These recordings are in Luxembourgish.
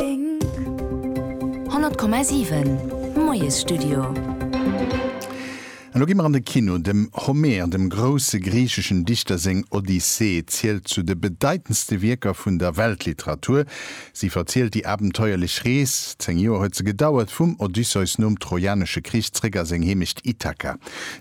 100,7 Moiesstudio. Elo gi mer an de Kino. Dem Homer, dem grousse griicheschen Dichter seng Odyssee zielt zu de bedeitendste Wierker vun der Weltliteratur. Si verzielt déi abenteuerlech Rees, zéng Joer huet se gedauert, vum Odysseus nom Trojanesche Krich zréck a seng Heemecht Ithaka.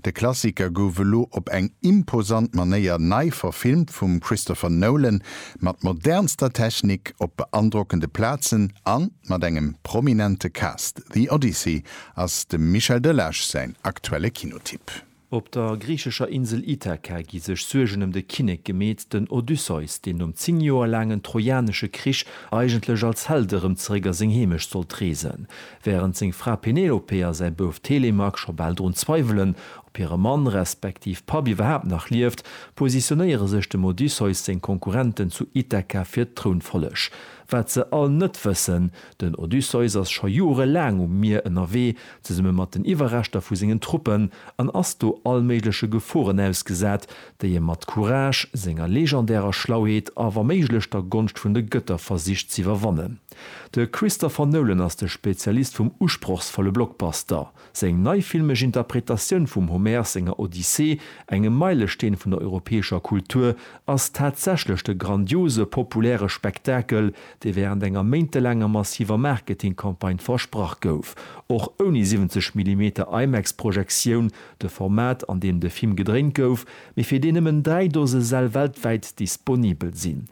De Klassiker gouf elo op eng imposant Manéier nei verfilmt vum Christopher Nolan, mat modernster Technik op beandrockende Plazen a mat engem prominente Cast. The Odyssey ass dem Michel Delage säin aktuelle Kinotipp. Op der griichescher Insel Ithaka gi sech Suergen ëm de Kinnek gemeet. Den Odysseus, deen nom 10 Joer laangen trojanesche Krich eigentlech als Held erëm zeréck a seng Heemecht sollt reesen, wärend seng Fra Penelope a säi Bouf Telemaque scho bal drun zweiwelen, Ob hire Mann, respektiv Papp iwwerhaapt nach lieft, positionéiere sech dem Odysseus seng Konkurrenten zu Ithaka fir d'Trounfolleg. Wat se all net wëssen, Den Odysseus ass scho Jore laang um Mier ënnerwee, zesumme mat den Iwwerreschter vu sengen Truppen, an ass do allméigleche Geforen ausgesat, déi e mat Courage, senger legendärer Schlauheet a wa méiglech der Gonscht vun de Gëtter versicht z'iwwerwannen. De Christopher Nolan ass de Spezialist vum usprochsvolle Blockbuster. Seng nei filmesch Interpretatioun vum Homer senger Odyssee, engem Meilesteen vun der europäescher Kultur, ass tatsächlech de grandiose populäre Spektakel, dee während enger méintelaanger massiver Marketingcampagne versprach gouf. Och ouni 70 Millimeter IMAX-Projektioun, de Format an deem de Film gedréint gouf, mee fir deen nëmmen dräi Dose Säll weltwäit disponibel sinn.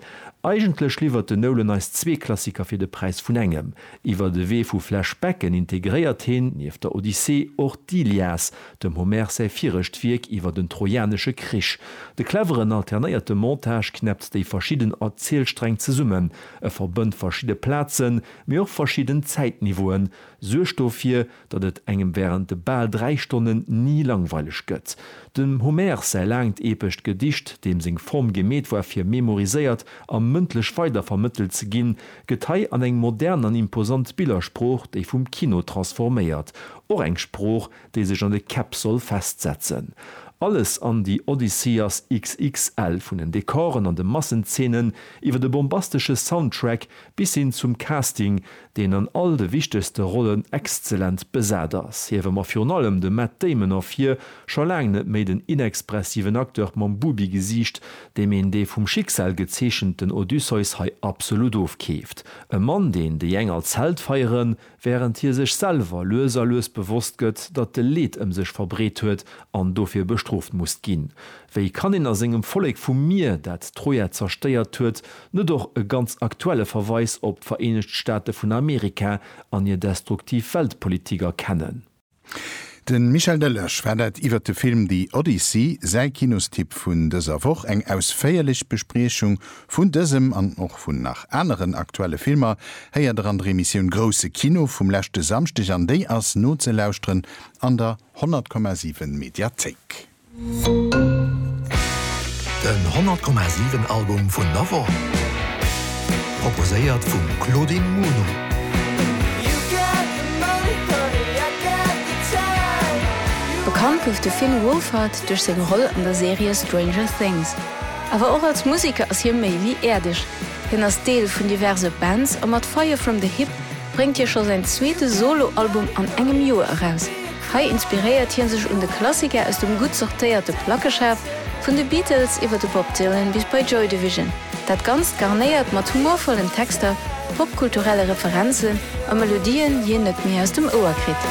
Eigentlech liwwert den Nolan eis zwee Klassiker fir de Präis vun engem. Iwwer de Wee vu Flashbacken integréiert heen, nieft der Odyssee, och d'Ilias, dem Homer säi virescht Wierk iwwer den Trojanesche Krich. De cleveren alternéierte Montage knäppt déi verschidden Erzielsträng zesummen, e verbënnt verschidde Plazen, mee och verschidden Zäitniveauen, suergt dofir, datt et engem während de bal dräi Stonnen ni langweileg gëtt. Dem Homère säi laangt epescht Gedicht, deem seng Form gemeet war fir memoriséiert a mëndlech weider vermëttelt ze ginn, gëtt hei an eng modern an imposant Billersprooch, déi vum Kino transforméiert, och eng Sprooch, déi sech an de Käpp soll festsetzen. Alles an The Odyssey ass XXL, vun den Dekoren an de Massenzeenen, iwwer de bombastesche Soundtrack bis hin zum Casting, deen an all de wichtegste Rollen exzellent besat ass. Hiewe mer virun allem de Matt Damon ervir, scho laang net méi den inexpressiven Acteur mam Bubi-Gesiicht, deem een dee vum Schicksal gezeechenten Odysseus hei absolut ofkeeft. E Mann, deen déi eng als Held feieren, wärend hie sech selwer lues a lues bewosst gëtt, datt de Leed ëm sech verbreet huet an dofir bestrooft musst ginn. Wéi kann een a sengem Vollek vum Mier, dat d'Troja zerstéiert huet, Net och e ganz aktuelle Verweis op d'Vereenegt Staate vun Amerika an hir destruktiv Weltpolitik erkennen. De Michel Delage war dat iwwert de Film The Odyssey, säi Kinostipp vun dëser Woch. Eng ausféierlech Bespriechung vun dësem an och vun nach aneren aktuelle Filmer héiert der an der Emissioun Grousse Kino vum leschte Samschdeg an déi ass nozelauschteren an der 100,7 Mediathéik. Den 100,7 Album vun der Woch, proposéiert vum Claudine Muno. Bekannt gouf de Finn Wolfhard duerch seng Roll an der Serie Stranger Things. Awer och als Museker ass hie méi wéi äerdeg. Hien ass Deel vun diverse Bands a mat Fire From The Hip bréngt hie scho säin zweete Solo-Album an engem Joer eraus. Hei inspiréiert hie sech un de Klassiker aus dem gutt sortéierte Plackeschaf, vun de Beatles iwwer de Bob Dylan bis bei Joy Division. Dat Ganzt garnéiert mat humorvollen Texter, popkulturelle Referenzen a Melodien, déi een net méi aus dem Ouer kritt.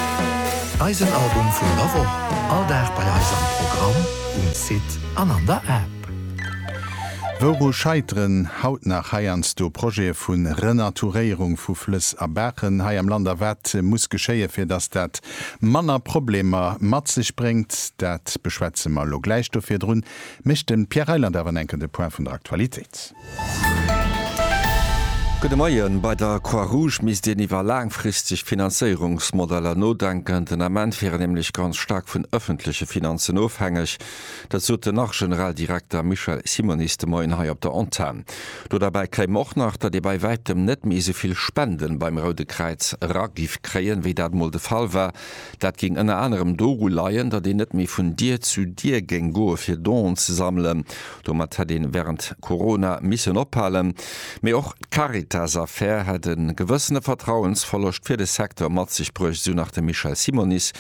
Eisen Album vun der Woch, all Dag bei eis am Programm, um Site an an der App. Wouru scheiteren haut nach heiansdo Projete vu Renaturéierung vu Flëss a Baachen hei am Land a wat muss geschéien, fir datt dat manner Problemer mat sech bréngt? Dat beschwätze mer elo gläich. Do virdrun mécht de Pierre Reyland awer en enken de Point vun der Aktualitéit. Gudde Moien. Bei der Croix-Rouge misst een iwwer laangfristeg Finanzéierungsmodeller nodenken. Den Ament wier een nämlech ganz staark vun ëffentleche Finanzen ofhängeg. Dat sot den Arch-Generaldirekter Michel Simonis de Moien hei op der Antenn. Do derbäi kéim och nach, datt ee bei wäitem net méi esou vill Spenden beim Roude Kräiz era giff kréien, wéi dat mol de Fall war. Dat géing ënner anerem doru leien, datt een net méi vun Dier zu Dier géing goe fir Donen ze sammelen. Domat hätt ee wärend Corona missen ophalen. Mee och d'Caritas-Affär hätt e gewëssene Vertrauensverloscht fir de Secteur mat sech bruecht, esou nach de Michel Simonis.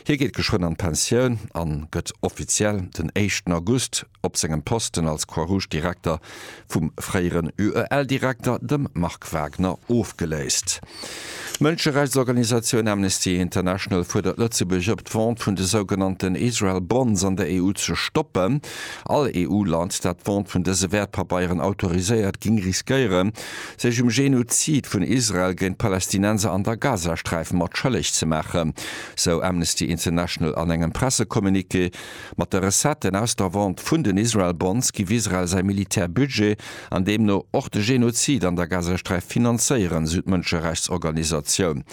Hie geet geschwënn an d'Pensioun an gëtt offiziell den éischten August op sengem Posten als Croix-Rouge-Direkter vum fréieren UEL-Direkter, dem Marc Wagner, ofgeléist. D'Mënscherechtsorganisatioun Amnesty International fuerdert Lëtzebuerg op, d'Vente vun de sougenannten Israel Bonds an der EU ze stoppen. All EU-Land, dat d'Vente vun dëse Wäertpabeieren autoriséiert, géing riskéieren, sech um Genozid vun Israel géint d'Palästinenser an der Gazasträif mat schëlleg ze maachen. sou Amnesty International an engem Pressecommuniqué. Mat de Recetten aus der Vente vun den Israel Bonds giff Israel säi Militärbudget an deemno och de Genozid an der Gazasträif finanzéieren, sou d'Mënscherechtsorganisatioun.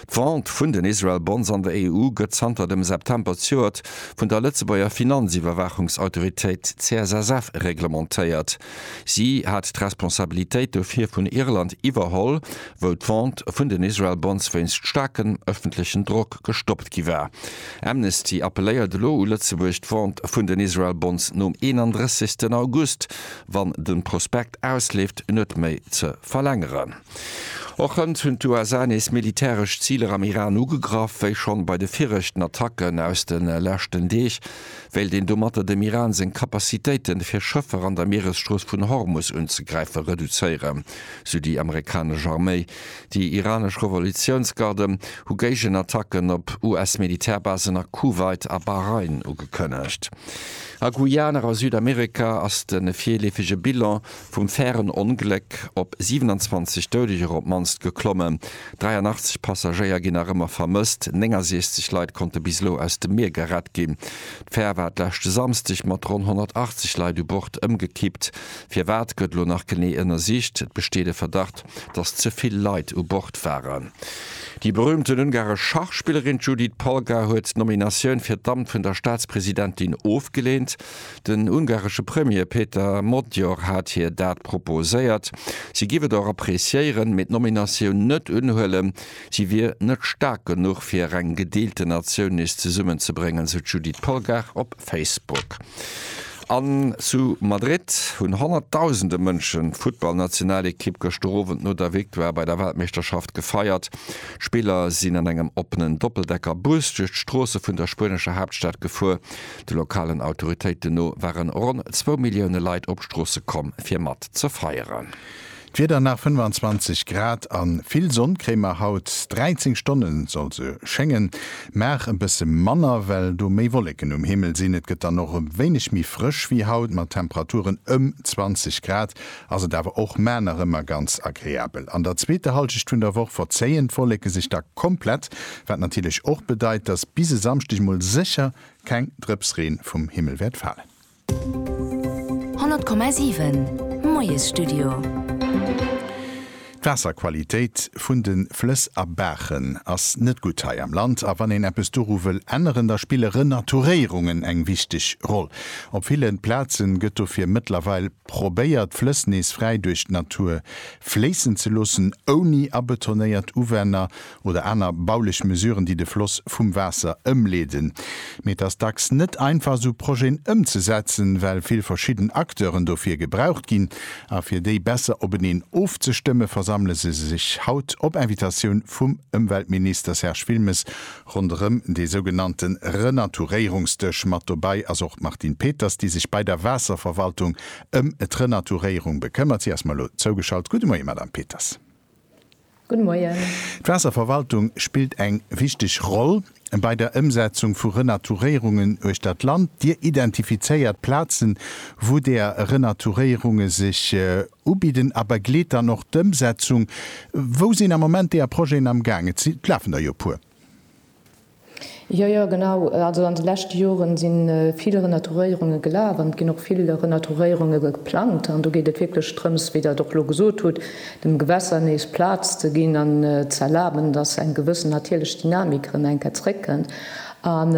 D'Vente vun den Israel Bonds an der EU gëtt zanter dem September zjouert vun der Lëtzebuerger Finanziwwerwaachungsautoritéit CSSF reglementéiert. Si hat d'Responsabilitéit dofir vun Irland iwwerholl, wou d'Vente vun den Israel Bonds wéinst staarkem ëffentlechen Drock gestoppt gi war. Amnesty appelléiert elo u Lëtzebuerg, d'Vente vun den Israel Bonds nom 31 August, wann de Prospekt ausleeft, net méi ze verlängeren. Och hënt hunn d'USA nees militäresch Ziler am Iran ugegraff. Wéi schonn bei de viregten Attacken aus de leschten Deeg, wéilt een domatter dem Iran seng Capacitéiten, fir Schëffer an der Mieresstrooss vun Hormus unzegräifen, reduzéieren, sou déi amerikanesch Arméi. Déi iranesch Revolutiounsgarden hu Géigenattacken op US-Militärbasen a Kuwait a Bahrain ugekënnegt. A Guyana a Südamerika ass de virleefege Bilan Vum fairen Ongléck op 27 Doudeger op d'mannst geklommen, 83 Passagéier ginn nach ëmmer vermësst, 69 Leit konnte bis elo aus dem Mier gerett ginn. D'Fär war d'leschte Samsdeg mat ronn 180 Leit u Bord ëmgekippt. Firwat, gëtt elo nach genee ënnersicht. Et besteet e Verdacht, datt ze vill Leit u Bord waren. Déi berüümten ungaresch Schachspillerin Judit Polgar huet d'Nominatioun fir d'Amt vun der Staatspresidentin ofgeleent. Den ungaresche Premier Peter Modyor hat hir dat proposéiert. Si giff et och appreciéieren, mee d'Nominatioun net unhuelen. Si wier net staark genuch fir eng gedeelte Natioun nees zesummen ze bréngen, sou d'Judith Polgar op Facebook. An zu Madrid hunn honnertdausende Mënsche d'Futtballnationalekipp gëschter Owend no der Victoire bei der Weltmeeschterschaft gefeiert. D'Spiller sinn an engem oppenen Doppeldecker-Bus duerch d'Stroosse vun der spuenescher Haaptstad gefuer. De lokalen Autoritéiten no ware ronn zwou Millioune Leit op d'Stroosse komm, fir mat ze feieren. D'Wieder nach 25 Grad a vill Sonn kréie mer haut. 13 Stonne soll se schéngen, mar e bësse manner, well do méi Wolleken um Himmel sinn. Et gëtt dann och e wéineg méi frësch wéi haut, mat Temperaturen ëm 20 Grad ass et awer och, mä nach ëmmer ganz agreabel. An der zweeter Hallschecht vun der Woch verzéien d'Wolleke sech da komplett, wat natierlech och bedeit, dass bis e Samschdeg mol sécher Keng Drëps Reen vum Himmel wäert falen. 100,7 Moiesstudio. D'Waasserqualitéit vun de Flëss a Baachen ass net gutt hei am Land, a wann een eppes doru wëll änneren, da spille Renaturéierungen eng wichteg Roll. Op ville Plaze gëtt dofir mëttlerweil probéiert, d'Flëss nees fräi duerch d'Natur fléissen ze loossen, ouni abetonéiert Uwänner oder aner baulech Mesuren, déi de Floss vum Waasser ëmleeden. Mee et ass dacks net einfach, esou Projeten ëmzesetzen, well vill verschidden Acteuren dofir gebraucht ginn. A fir déi besser openeen ofzestëmme versammele se sech haut, op Invitatioun vum Ëmweltminister Serge Wilmes, ronderëm dee sougenannte Renaturéierungsdësch. Mat dobäi ass och d'Martine Peters, déi sech bei der Waasserverwaltung ëm d'Renaturéierung bekëmmert. Si ass mer elo zougeschalt. Gudde Moie, Madame Peters. Gudde Moien. D'Waasserverwaltung spillt eng wichteg Roll bei der Ëmsetzung vu Renaturéierungen uechtert d'Land. Dir identifizéiert Plazen, wou där Renaturéierunge sech ubidden a begleet dann och d'Ëmsetzung. Wou sinn am Moment där Projeten am Gaang? Et lafen der jo e puer. Jo, jo, genau. Also an de leschte Joren si vill Renaturéierunge gelaf an et ginn och vill Renaturéierunge geplangt. An do geet et wierklech drëms, wéi Der et och elo gesot hutt, dem Gewässer nees Plaz ze ginn an ze erlaben, dass eng gewëssen natierlech Dynamik erëm eng Kéier zréckkënnt. An,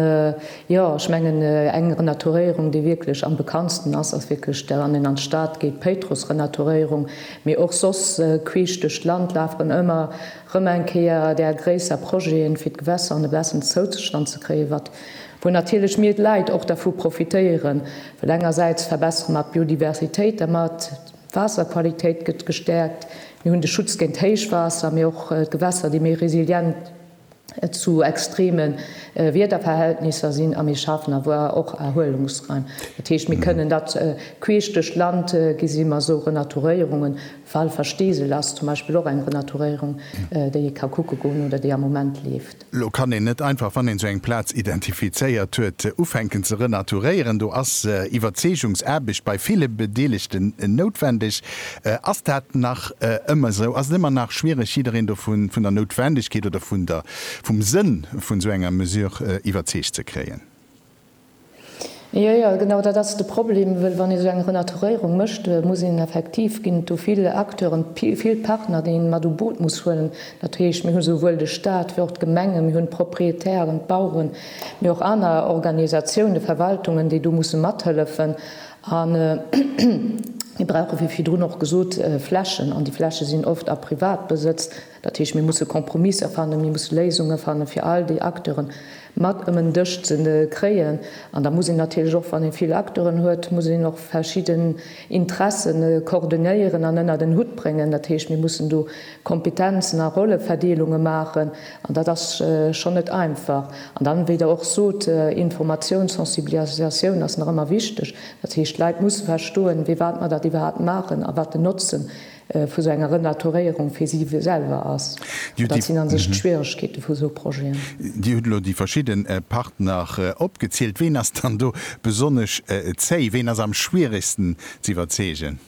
jo, ech mengen, eng Renaturéierung, déi wierklech am bekanntsten ass, ass wierklech, wann een an d'Stad geet, d'Péitruss-Renaturéierung. Mee och soss, queesch duerch d'Land lafen ëmmer Rëm eng Kéier där gréisser Projeten, fir d'Gewässer an e bessen Zouzestand ze kréien, wat, wou natierlech mir d'Leit och dervu profitéieren, well engersäits verbessere mer d'Biodiversitéit dermat, d'Waasserqualitéit gëtt gestäerkt, mir hunn de Schutz géint Héichwaasser, mee och d'Gewässer, déi méi resilient zu extreme Wiederverhältnisser sinn a mir schafen awer och Erhuelungsraim. Dat heescht, mir kënnen dat queesch duerch d'Land gi si mer esou Renaturéierungen, Walversteesel ass zum Beispill och eng Renaturéierung, déi ee ka kucke goen oder déi am Moment leeft. Elo kann een net einfach, wann een esou eng Plaz identifizéiert huet, ufänken ze renaturéieren. Do ass Iwwerzeegungsaarbecht bei ville Bedeelegten noutwendeg. Ass dat nach ëmmer esou? Ass et ëmmer nach schwiereg, jiddereen do vun der Noutwendegkeet oder vum Sënn vun esou enger Mesure iwwerzeegt ze kréien? Jo, jo, genau dat ass de Problem, wëll wann ee sou eng Renaturéierung mécht, muss een effektiv, ginn et do vill Acteuren, vill Partner, déi ee mat u Boot muss huelen. Dat heescht, mir hu souwuel de Stat wéi och d'Gemengen, mir hunn d'Proprietären, d'Baueren, mee och aner Organisatiounen, Verwaltungen, déi do musse mathëllefen. A mir brauche wéi virdrun och gesot Flächen, an déi Fläche sinn oft a Privatbesëtz. Dat heescht, mir musse Kompromisser fannen, mir musse Léisunge fannen, fir all déi Acteure mat ëm en Dësch ze kréien. An da muss een natierlech och, wann ee vill Acteuren huet, muss een och verschidden Interesse koordonéieren an ënnert en Hutt bréngen. Dat heescht, mir mussen do Kompetenzen a Rolleverdeelunge maachen. An dat ass schonn net einfach. An dann, wéi Der och sot, Informatioun, Sensibilisatioun ass nach ëmmer wichteg. Dat heescht, d'Leit musse verstoen, firwat mer dat iwwerhaapt maachen a wat den Notzen vu sou enger Renaturéierung fir si selwer ass. Dat sinn a sech d'Schwieregkeete vu sou Projeten. Dir hutt elo déi verschidde Partner opgezielt. Ween ass dann do besonnesch zéi? Ween ass am schwieregsten z'iwwerzeegen?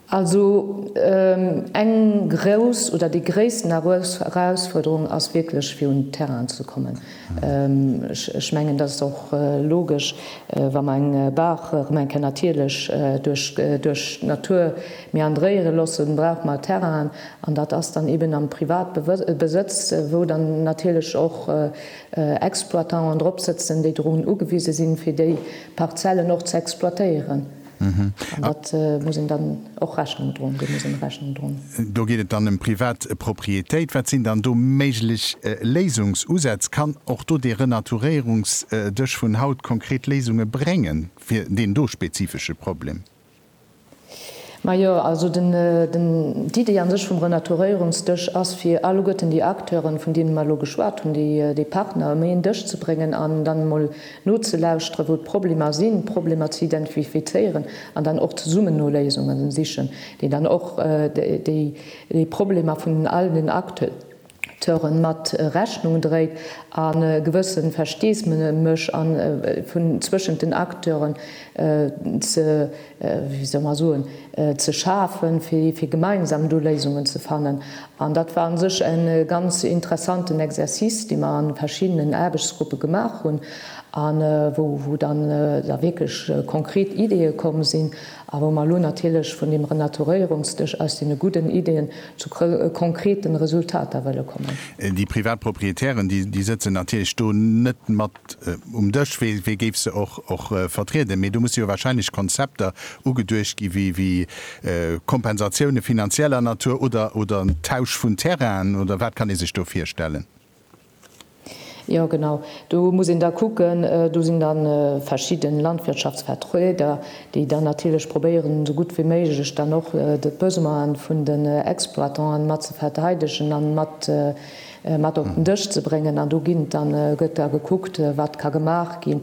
Also eng grouss oder déi gréissten Erausfuerderung ass wierklech, fir un d'Terrainen ze kommen. Ech mengen, dat ass och logesch, wa mer eng Baach erëm eng Kéier natierlech duerch d'Natur meandréiere loossen, brauch mer Terrainen. An dat ass dann eeben am Privatbesëtz, wou dann natierlech och Exploitanten dropsëtzen, déi dorun ugewise sinn, fir déi Parzellen och ze exploitéieren. An dat muss een dann och Rechnung droen, do muss een Rechnung droen. Do geet et dann ëm privat Propriétéit. Wat sinn dann do méiglech Léisungsusätz? Kann och do dee Renaturéierungsdësch vun haut konkret Léisunge bréngen fir deen do spezifesche Problem? Majo, also d'Idee a sech vum Renaturéierungsdësch ass, fir alleguerten déi Acteuren, vun deene mer elo geschwat hunn, déi Partner, méi een Dësch ze bréngen an dann emol Nozelauschteren, wou d'Problemer sinn, d'Problemer ze identifizéieren an dann och zesummen no Léisunge sichen, déi dann och déi Problemer vun all den Acteure mat Rechnung dréit an e gewësse Versteesdemech vun zwëschent den Acteure ze wéi soll mer soen, ze schafen, fir gemeinsam do Léisungen ze fannen. An dat war a sech e ganz interessanten Exercice, dee mer a verschiddenen Aarbechtsgruppe gemaach hunn a wou dann da wierklech konkret Ideeë komm sinn a wou mer elo natierlech vun deem Renaturéierungsdësch aus deene gudden Ideeën zu konkrete Resultater wëlle kommen. Déi privat Proprietären, déi sëtzen natierlech do net mat um Dësch, wéi wéi géif se och och vertrieden, mee do musse jo wahrscheinlech Konzepter ugeduecht gi wéi wéi Kompensatioune finanzieller Natur oder oder en Tausch vun Terrainen oder wat kann ee sech do virstellen? Jo genau, do muss een da kucken, do sinn da verschidden Landwirtschaftsvertrueder, déi dann natierlech probéieren esou gutt wéi méiglech dann och d'Besoine vun den Exploitanten mat ze verteidegen an mat mat op den Dësch ze bréngen an do ginn dann gëtt da gekuckt wat ka gemaach gi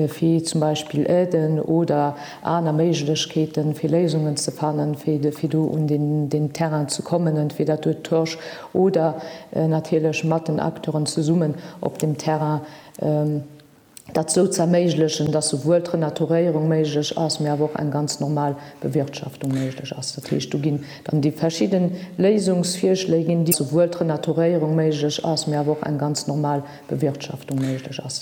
fir zum Beispill Aiden oder aner Méiglechkeete fir Léisungen ze fannen, fir do un den Terrain ze kommen an fir dat huet d'Horsch oder natierlech mat den Acteuren zesummen op dem Terrain. dat esou ze erméiglechen, dass souwuel d'Renaturéierung méiglech ass, mee awer och eng ganz normal Bewirtschaftung méiglech ass. Dat heescht, do ginn dann déi verschidde Léisungsvirschléi ginn. Souwuel d'Renaturéierung méiglech ass, mee awer och eng ganz normal Bewirtschaftung méiglech ass.